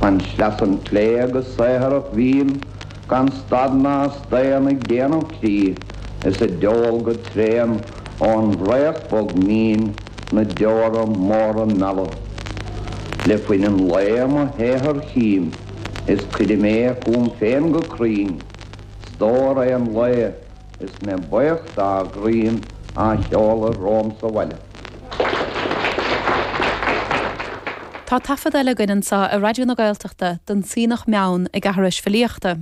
Chun sleasa an tslé' go saothrach bhím gan stad ná staon ag déanamh crích is ag deol go tréan ón bhfraoch bog mín na deora móra meala. Le fuin an lae mo shaothar chím is cuirim é chugam féin go cruinn, stór aon lae is mé baoch dá dhroim á sheoladh romham sa bhaile. Tá taifead eile againn anseo ar Raidió na Gaeltachta den tSuibhneach Meann ag aithris filíochta,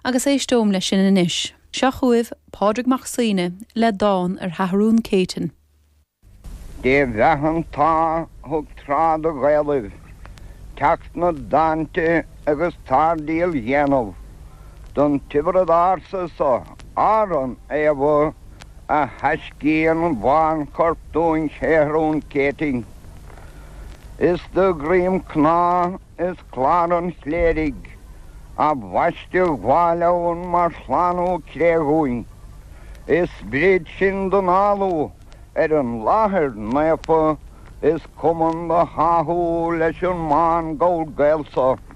agus éisteoim leis sin anois. Seo chugaibh Pádraig Mac Suibhne le dán ar Sheathrún Céitinn. Dé bheatha an t-ádh thug tráth do Ghaelaibh teacht 'na dtáinte agus táirdeal dhéanamh. don Tiobraid Ársa so, Árann Éibhir a thaiscíonn bánchorp dúinn Séathrún Céitinn. Is de dhroim cnámh is clár an chléirigh a bhaisteadh Mháel Eoin mar shlánú cré dhúinn, is sprid sin d'análú ar an láthair naofa is cumann do tháthú leis an mBán Gall Gael so.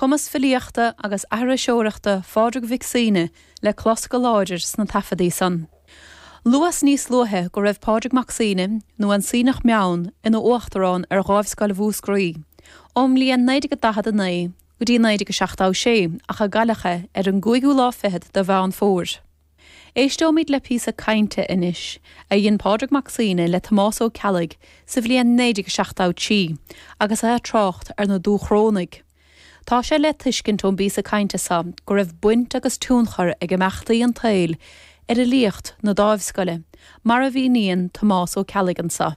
cumas filíochta agus aithriseoireachta Phádraig Mhic Suibhne le clos go láidir sna taifeadaí san. Luas níos luaithe go raibh Pádraig Mac Suibhne, nó an Suibhneach Meann, ina uachtarán ar Dháimhscoil Mhúscraí ón mbliain 1949 go dtí 1976 ach a cailleadh é ar an gcúigiú lá fichead de Mheán Fómhair. Éisteoimid le píosa cainte anois a dhein Pádraig Mac Suibhne le Tomás Ó Ceallaigh sa bhliain 1973 agus é ag trácht ar na Dúchrónaigh. Tá sé le tuiscint ón bpíosa cainte seo go raibh baint agus tionchar ag imeachtaí an tsaoil ar fhilíocht na Dáimhscoile, mar a mhíníonn Tomás Ó Ceallaigh anso.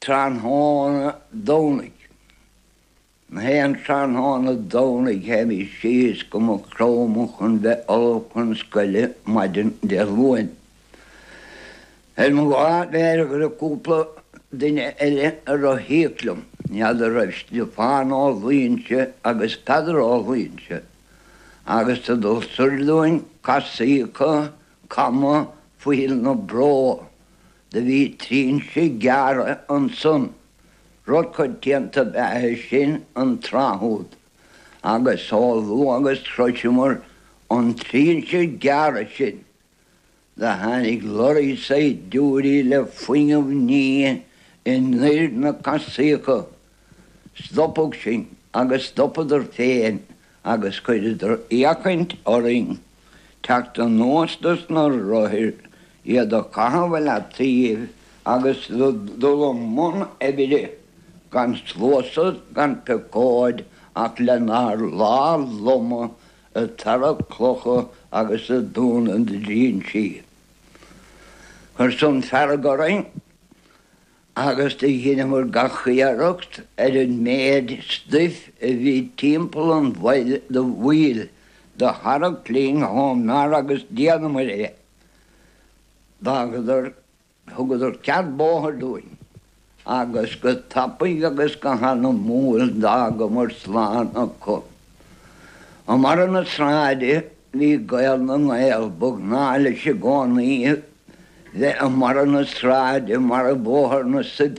Tráthnóna Domhnaigh. Nach aon tráthnóna Domhnaigh théimis síos go Maigh Chromtha chun bheith ullamh chun scoile maidin Dé Luain. Ar mo lá b'fhéidir go raibh cúpla duine eile ag rothaíocht liom, n'fheadar raibh Stiofán Ó Luínse agus Peadar Ó Luínse agus ag tabhairt dúinn casaíocha cama Phoill na Bró. Do bhí trinse gearrtha ansan, rud coitianta ab ea é sin an tráth úd agus chomh luath agus shroiseamar an trinse gearrtha sin do tháinig lorry saighdiúirí le fuinneamh nimhe anoir na casaíocha Stopadh sinn agus stopadar féin agus chuireadar fhéachaint orainn teacht anuas de sna rothair, iad a chaitheamh i leataoibh agus dul i mbun oibre gan sluasad gan piocóid ach lenár lámhaibh loma ag tarrac clocha agus ag dúnadh na dtrínsí. Chuir san fearg orainn. agus do dheineamair gach iarracht ar an méid stuif a bhí timpeall an bhaill do tharrac linn chomh mear agus d'fhéadamair é. D'fhágadar, thugadar cead bóthair dúinn, agus go tapaidh agus go hanamúil d'fhágamair slán acu. I mbarra na sráide bhí Gael na nGael, ba ghnáth leis i gcónaí bheith i mbarra na sráide i mbarra Bóthar na Sop